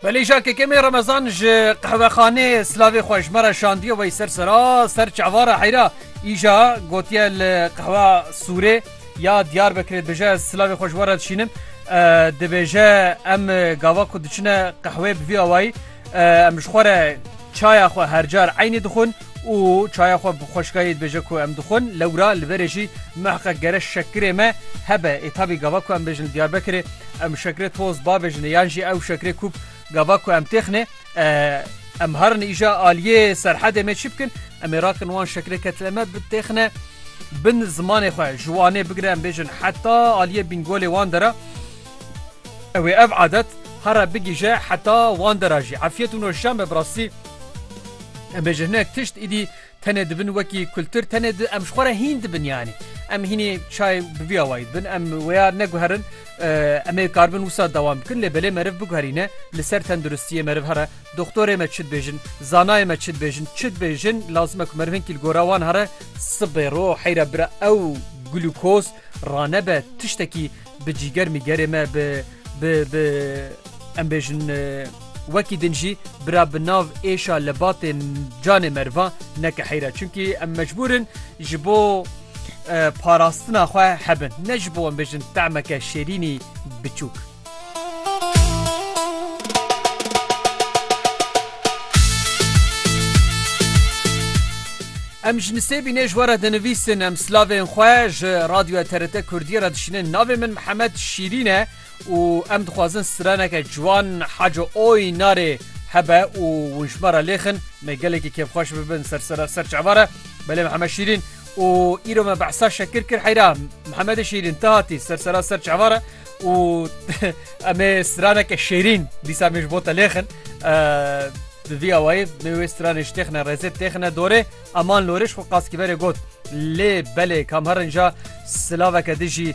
Belê ja kekemê remezan ji qehwexanê silavê xwe ji me re şandiye wey ser sera ser çavara heyra îja gotiye li qehwa sûrê ya diyar bekirê dibêje ez silavê xwe ji we re dişînim dibêje em gava ku diçine qehwê bi vî awayî Em ji xwe re çaya xwe her car eynî dixwin û çaya xwe bi xweşikayê dibêje ku em dixwin. Lewra li verê jî muhiqek gere şekirê me hebe. Ê tabî gava ku em bêjin li Diyarbekirê em şekirê toz babêjinê yan jî ew şekirê kûp gava ku em têxinê em herin îja aliyê serhedê me çi bikin? Em ê rakin wan şekirê ke tile me bitêxine bin zimanê xwe ji wanê bigire em bêjin heta aliyê bingolê wan de re. Ew ê ev adet herre bigihije heta wan de ra jî. Efyet û nûşame bi rastî em ê ji hinek tişt îdî tenê dibin wekî kultur tenê di em ji xwe re hîn dibin yanî em hînî çay bi vî awayî dibin em wêya neguherin em ê karibin wisa dewam bikin lê belê meriv biguherîne li ser tenduristiyê meriv here doktorê me çi dibêjin zanayê me çi dibêjin çi dibêjin lazim e ku meriv hinkî li gora wan here sibê ro heyra bira ew glukoz ranebe tiştekî Bi cîger mîgerê me bi bi bi em bêjin wekî din jî bira bi nav êşa li batê canê merivan neke heyra çunkî em mecbûrin ji bo parastina xwe hebin ne ji bo em bêjin temeke şêrînî biçûk. Em ji nisêbî nê ji we re dinivîsin em silavên xwe ji radyoya TRT Kurdiyê re dişînin. Navê min Mihemed Şîrîn e û em dixwazin straneke ciwan Haco Oy Narê hebe û hûn ji me re lêxin. Me gelekî kêfxweş bibin ser ser ser çava re. Belê Mihemed Şîrîn û îro me behsa Şekir kir heyra Mihemedê Şîrîn tu hatî ser ser ser çava re. û em ê straneke şêrîn dîsa min ji bo te lêxin di vî awayê min wê stranê ji têxine rêzê têxine dorê eman loriş xwe qaskîberê got lê belê kamherin ja silaveke dijî